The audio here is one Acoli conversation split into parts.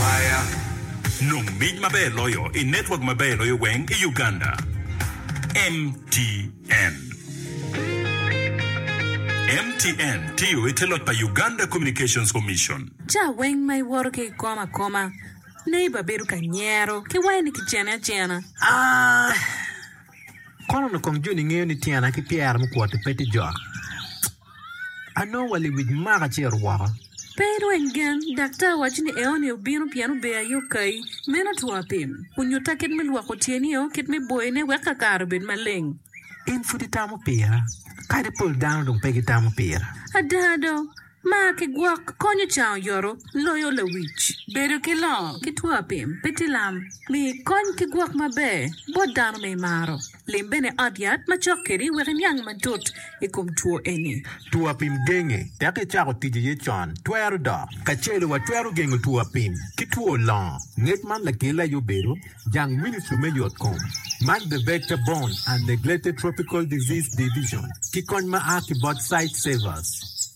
Aya, nong mic maber loyo i network maber loyo weng i Uganda, MTN. MTN tiyo i te loc pa Uganda Communications Commission. Ca weng ma iwoto ki ikom akoma, neighbor bedo ka nyero ki wayo ni kicene acena. Aa, Kono nokong Joni ngeyo ni tyena ki pyera mukwoti pe tye jok. anongo wa lewic maka acito woko. Pe irweny gen, daktar wacci ni eoni obino pien ober aye okayi. Meno two apim. Onyutta kit me lwoko tyenio, kit me boyone wek ka kare obed maleng. In pud itamo pira, kadi pol dano dong pe gitamo pira. Ada do, mar ki gwok konyo can oyoto loyo lawic. Bedo ki longo ki two apim pe tye lam. Mi kony ki gwok maber bot dano ma imaro. Lim bene ot yat ma cok kedi wek iniang matut i kom two eni. Two apim genge tek icako tic aye con twero dok. Kacel watwero gengo two apim ki two longo ngec man lakele aye obedo jang ministry me yot kom man the vector borne and neglected tropical disease division ki kony ma a ki bot site savers.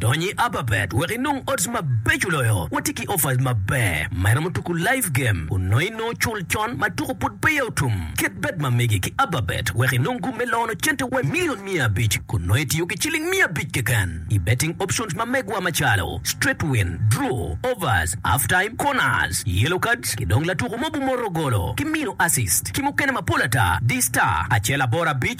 Dony i Ababet wek inong odds mabeco loyo. Watye ki offers maber ma iromo tuku live game kun nongo inongo cul con ma tuku pud peya otum. Ket bet ma mege ki Ababet wek inong gum me lono cente wa milion miya abic kun nongo itiyo ki ciling miya abic keken i betting options ma megwa macalo straight win, draw, overs, half time, corners, yellow cards ki dong latuku mogo moto golo ki mino assist ki mukene mapol ata. Di star acel aboro abic.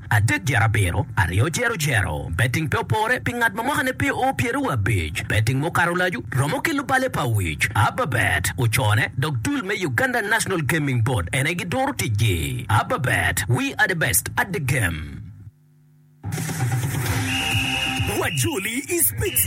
adek dyere abiro, aryo dyere odyero. Betting pe opore pi ngat ma mwakane pe oo pyere wa abic. Betting mukato lacu romo ki lubale pa wic. Ababet ocone dok dul me Uganda National Gaming Board en aye giduro ticgi. Ababet, we are the best at the game. Wajoli i speech.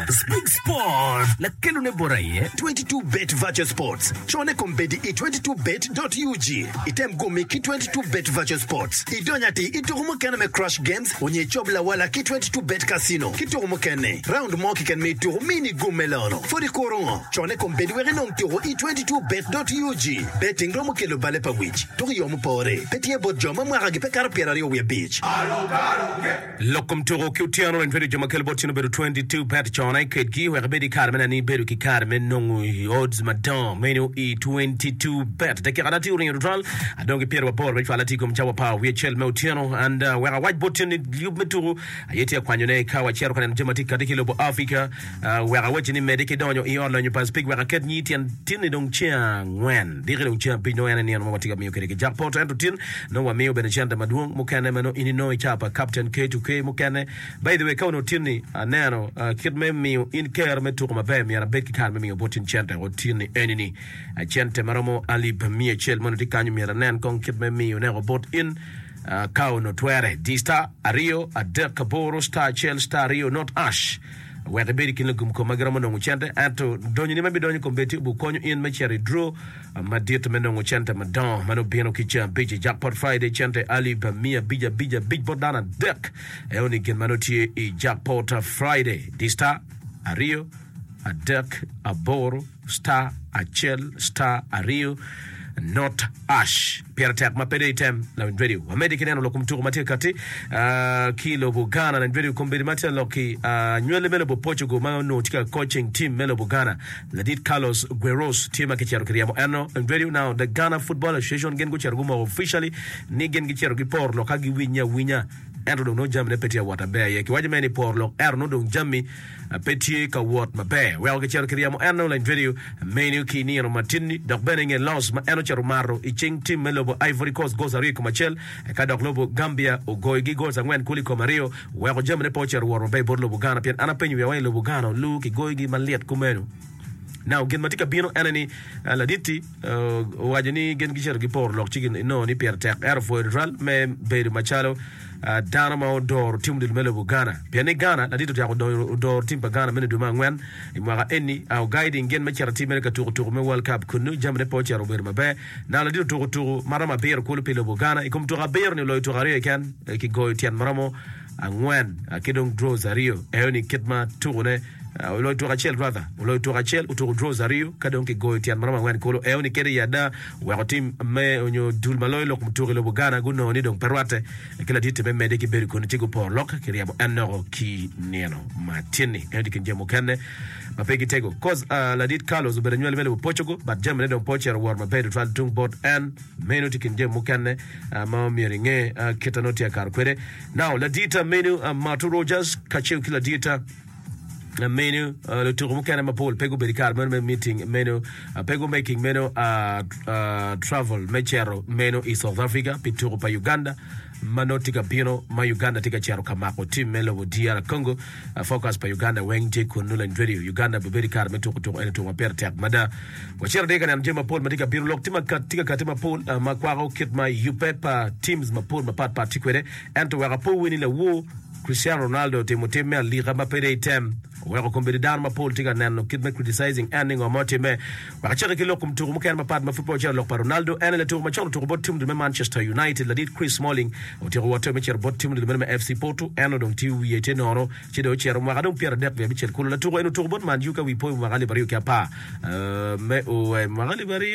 Spring Sport, lakelone bot aye 22bet Virtual Sports. Cone kombeddi i 22bet.ug. Item gumi ki 22bet Virtual Sports, idony atir i tuku mukene me Crush Games onyo icob lawala ki 22bet Casino ki tuku mukene. Round mo kiken me tuku mi ni gum me lono. Pwod ikuro ngo? Cone kombeddi wek inong tuku i 22bet.ug. Betting romo kelo bale pa wic, tuku i yo mupore. Pe tye bot jo ma mwakagi pe kato pyeraryo wiye abic. Lok kom tuko ki otyeno reny twero jo ma kelo bot cen obedo 22 peto cone kedgi wek ibed i kare mena ni ibedo ki kare me nongo i odds madongo meno i 22 bet dakika na tye oringo tutwal adong ki pyero aboro me cwal atye kom cawa pa wiye cel me otyeno and wek awac bot cen ni yub me tuko aye tye akwanyone ka wacito ka neno jami ma tye kati ki lobo Africa Wek awacci ni medi ki donyo i ot lonyo pa Speke wek aket nyi tyen tin-ni dong ceng angwen. Diki dong ceng abic nongo en aye nino ma watye ka miyo kede ki Jack Porter ento tin nongo wamiyo bene cente madwong mukene ma nongo in inongo i ca pa Captain K2K mukene. By the way ka onongo tin-ni aneno kit me miyo in ker me tuko maber myero abed ki kare me miyo bot in cente o tin-ni eni-ni cente ma romo alip miya acel ma onongo tye kanyo myero anen kong kit me miyo neko bot in ka onongo twere. Di star aryo adek aboro star acel star aryo not ash. Wek ibed i kin lugomkom ma giromo nongo cente, ento donyoni ma bidonyo i kom betio bikonyo in me cito i dro madit me nongo cente madongo. Ma nongo bino ki ceng abic i Jackpot Friday, cente alip miya abic abic abic bot dano adek. Eoni gin ma nongo tye i Jackpot Friday, Di star, aryo, adek, aboro, star acel star aryo not ash pire tek ma pedo item lawiny radio wamedi ki neno lok kom tuko ma tye kati ah, ki lobo Ghana lawiny radio kombedi ma tye lok ki ah, nywele me lobo Portugal ma onongo tye ka coaching team me lobo Ghana ladit Carlos Gueros tye ma kicito kiryemo eno lawiny radio now the Ghana Football Association gin gucito gumoko officially ni gin gicito giporo lok ka giwinye awinya ento dong nongo jamine pe tye awot aber aye kiwaco mere ni poro lok ento nongo dong jami Pe tye ka wot maber. Weko kicito ki ryemo en Online Video menu ki nino matini dok bene nge loss ma en ocito maro i cing tim me lobo Ivory Coast goals aryo i kom acel eka dok lobo Gambia ogoyo gi goals angwen kulu i kom aryo weko jamine pe ocito woro maber bot lobo Ghana pien an apenyo wiya wai lobo Ghana oluu ki goyo gi malit kumenu. Now gin matye ka bino ene ni laditti. Owaco ni gin gicito giporo lok ci ginongo ni pire tek ento pwoyo tutwal me bedo macalo dano ma odoro tim odilo me lobo Ghana. Pien ni Ghana, ladit otyeko odoro tim pa Ghana meno i dwe me angwen i mwaka eni. Ogayo i ding gin me cito atir mere ka tuko tuko me World Cup kunnu jamine pe ocito obedo maber. Nano ladit otuko tuko ma romo abiro kulu pi lobo Ghana. I kom tuko abiro-ni oloyo tuko aryo keken ki goyo tyen ma romo angwen ki dong draws aryo eyo ni kit ma tuku ne oloyo tuku acel rather oloyo tuku acel otuku draws aryo ka dong ki goyo tyen maromo angwen kulu eyo ni kede i ada weko tim me onyo dul ma loyo lok mutuku i lobo Ghana gunongo ni dong pe rwate ki ladite me mede ki bedo koni ci guporo lok ki ryebo en noko ki nino ma tyenni eyo ni kin jami mukene ma pe gi tego coz ladit Carlos obedo anywali me lobo Portugal but jami ne dong pe ocito woro maber tutwal tung bot en Meno tye kin jami mukene ma myero inge kit a nongo tye akato kwede. Now, ladita meno Marto Rogers kacel ki ladita meno lutuku mukene mapol pe gubedo i kare meno me meeting meno, pe gumaking meno travel me cito meno i South Africa pi tuku pa Uganda. ma nongo tye ka bino ma Uganda tye ka cito ka mako tim me lobo DR Congo, focus pa Uganda weng tye kunnu lany radio. Uganda bi bedo i kare me tuku tuku ento tuku ma pire tek mada. Wacito adya ka neno jami mapol ma tye ka bino. Lok tye maka- tye ka kati mapol ah, ma kwako kit ma yubbe pa teams mapol mapat pat tye kwede. Ento wek apowi ni lawo Cristiano Ronaldo otimo tim me alika ma pe deyo item. Oweko kombeddi dano mapol tye ka neno kit me criticising en ni ngo ma otimme. Ma kacake ki lok mutuku mukene mapat ma pud peya ocito lok pa Ronaldo, en aye latuku macon otuku bot tim odilo me Manchester United. Ladit Chris Smalling otyeko wote me cito bot tim odilo meno me FC Porto. En odong tye wiye tye nono ci dong ocito mwaka dong pyera adek wiye abicel kulu. Latuku eni otuku bot Man U ka wi poyo mwaka alip aryo ki apar me o mwaka alip aryo.